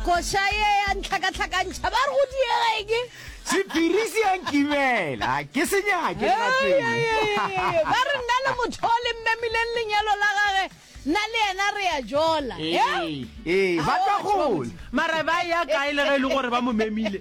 koša ye ya ntlhakatlhakantšha ba re go diegeke sephiri se yankibela ke se nyake ba re nna le motho o le mmemileng lenyalo la gage nna le yena re ya jola ee ba tla gola mara ba ya kae le ge e le gore ba mo memile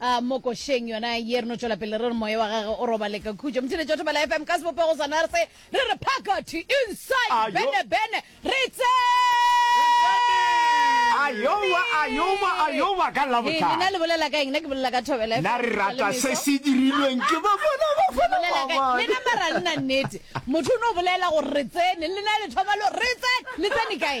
A mo košeng yona ye re no tšwela pele re re moya wa gage o robale ka khutšo. Motšheletši wa Thobela FM ka sebopego sa nurse re re phakathi, inside, Ayo. bene bene re Ayowa, ayowa, ayowa, ka Lena Labohlano. le bolela ka eng? Nna ke bolela ka Thobela FM. Na re Setswalle rata Meso. se se dirilweng ke Bafana Bafana Bolela ka- Bafana. lena mara nna nnete motho o no bolela gore re tsene lena le thoma lo re tsene le tsene kae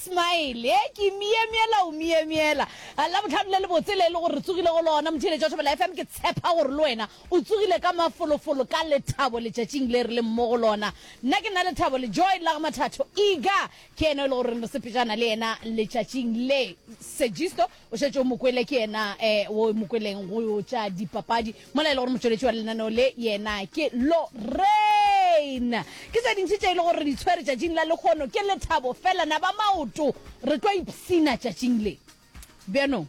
Smile He ke myemyela o myemyela A Labohlano le lebotse le e le gore re tsogile go lona Motheeletši wa Thobela FM Ke tshepa gore le wena o tsogile ka mafolofolo ka lethabo letšatšing le re leng mo go lona Nna ke na le thabo le joy la ga Mathatho Iga ke yena yo e le goreng re sepetšana le yena letšatšing le Segisto o šetše o mokwele ke yena um o mokweleng go tša dipapadi mola e le gore motšweletši wa lenaneo le yena ke lorain ke tse dintši tše e le gore re di tshwere tšatšing la lekgono ke lethabo fela na ba maoto re tlo ipsina tšatšing le bjanong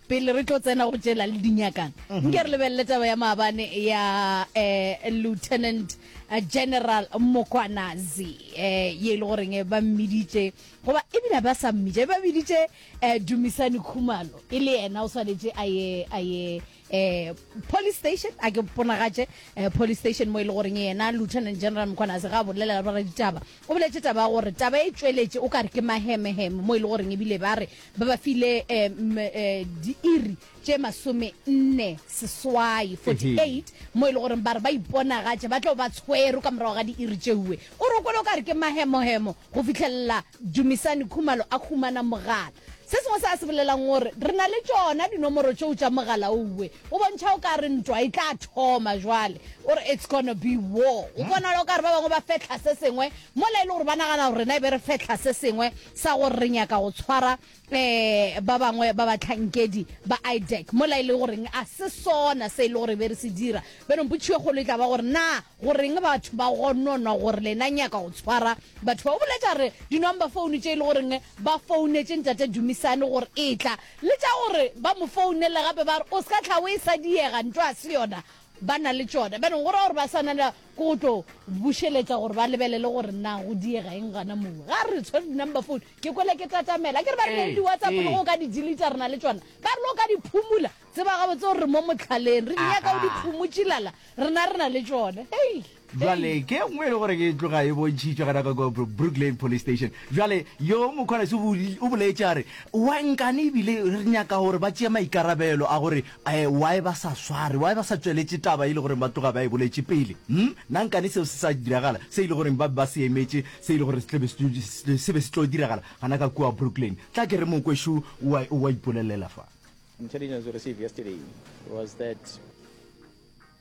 pele re tlo tsena go tšela le dinyakana mhm. nke re lebelele taba ya maabane ya um lieutenant eh, general mokwanazi um ye e le goreng ba mmiditše goba ebile ba sa mmiditše ba biditše Eh, Dumisani Khumalo e le yena o swanetše a ye a ye eh, police station a ke ponagatše eh, police station mo e le goreng yena lieutenant general mkhwanase ga a bolelela bara ditaba o boletše taba ya gore taba e tšweletše o ka re ke mahemeheme mo e le goreng ebile ba re ba ba file eh, m- eh, diiri tše masome-nne seswai, 48, mo e le goreng ba re ba iponagatše ba tlo ba tshwerwe ka morago ga diiri tšeuwe. O re o kwele o ka re ke mahemohemo go fihlelela Dumisani Khumalo a humana mogala. Se sengwe se a se bolelang o re, Re na le tšona dinomoro tšeo tša mogala ouwe. O bontšha o ka re ntwa e tla thoma jwale. O re, It's gonna be war. Go bonala o ka re ba bangwe ba fehla se sengwe mola e le gore ba nagana gore rena e be re fehla se sengwe sa gore re nyaka go tshwara um ba bangwe ba batlhankedi ba idec mola e le goreng a se sona se e le gore be re se dira benong potšiyo kgolo e tla ba gore na goreng batho ba gononwa gore lena nyaka go tshwara batho ba o boletša re di-number phone tše e le goreng ba founetse ntate dumisane gore e tla le tša gore ba mo founele gape ba re o se ka tlha o e sa diega nto a se yona ba na le tšona, bjale go ra gore ba swanela ke go tlo bušeletša gore ba lebelele gore na go diega eng gana moo. Ga re tshwere di-number phone, ke kwele ke tatamela. Akere ba re na le di-WhatsApp le go o ka di deleta re na le tšona. Ba re le o ka di phumula, tseba gabotse gore re mo motlhaleng, re di nyaka o di phumutšilala, rena re na le tšona. Hei! Bjale ke nngwe e le gore ke tloga e bontšhitšwe gana ka kwa Brooklyn Police Station. Bjale yo Mokgwanase o bo- o boletše a re, Wa nkane ebile re nyaka gore ba tšee maikarabelo a gore um why ba sa sware, why ba sa tšweletše taba e le gore ba tloga ba e boletše pele. Umm, na nkane seo se sa diragala, se e le gore ba be ba se emetše, se e le gore se tla be se tlo- se be se tlo diragala gana ka kua Brooklyn. Tla ke re Mokwešu o a- o a ipolelela fa. Intelligence we received yesterday was that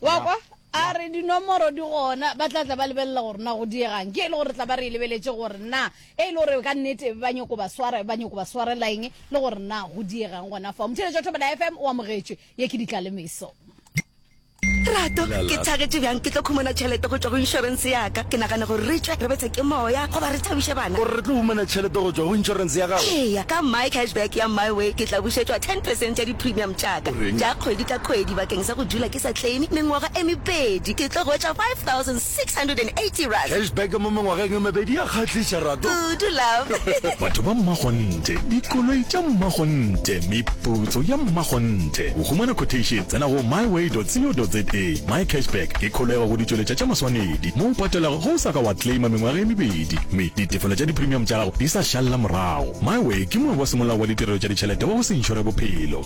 Wa kwa? A re dinomoro di gona, ba tla tla ba lebelela gore na go diegang. Ke e le gore re tla ba re e lebeletše gore na e le gore ka nnete ba nyoko ba swara, ba nyoko ba swarela eng le gore na go diegang gona fao. Motheeletša Thobela FM o amogetšwe. Ye ke ditlalemeso. Lerato, ke thagetše bjang ke tlo khumana tšhelete go tšwa go inšorense ya ka. Ke nagana gore re tšwe re betswe ke moya goba re thabiše bana. O re re tlo humana tšhelete go tšwa go inšorense ya gago? Eya, ka MyCashback ya MyWay ke tla bušetšwa ten percent ya di-premium tša ka tša kgwedi ka kgwedi bakeng sa. Ka go dula ke sa claime mengwaga e mebedi, ke tlo hwetša 5680 rands. Cashback mo mengwageng e mebedi ya kgahliša, Rato. Kudu, love. Batho ba mmakgonthe, dikoloi tša mmakgonthe, meputso ya mmakgonthe. Go humana quotation, tsena go myway.co.za. MyCashback ke kholego go ditšweletša tša maswanedi, mo o patelago ge o sa ka wa claima mengwaga e mebedi mme ditefelo tša dipremium tša gago di sa šalla morago. MyWay ke moe wa semolao wa ditirelo tša ditšhelete wa go se inšore bophelo.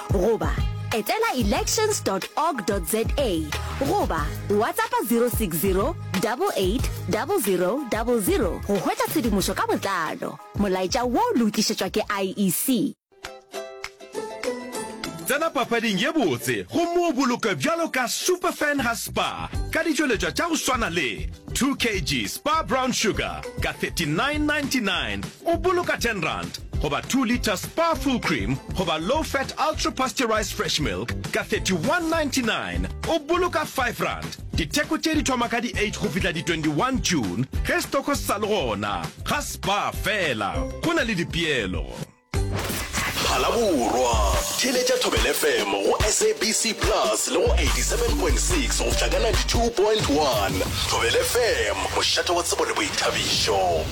goba etela elections dot org dot za goba WhatsAppa 060 88 00 00 go hwetša tshedimošo ka botlalo. Molaetša wo le o tlišetšwa ke IEC. Tsena papading ye botse gomme o bolokwe bjalo ka Super Fan ga Spa ka ditšweletšwa tša go swana le 2 kg Spa Brown Sugar ka 39.99, O boloka ten rand goba two litre Spa Full Cream goba Low Fat Ultra Pasteurized Fresh Milk ka 31.99, o boloka five rand. Ditheko tše di thoma ka di eight go fihla di 21 June ge setoko se sa le gona. Ga Spa fela, go na le dipeelo. Phalaborwa, Theeletša Thobela FM go SABC Plus le go 87.6 go fihla ka 92.1. Thobela FM, mošate wa tsebo le boithabišo.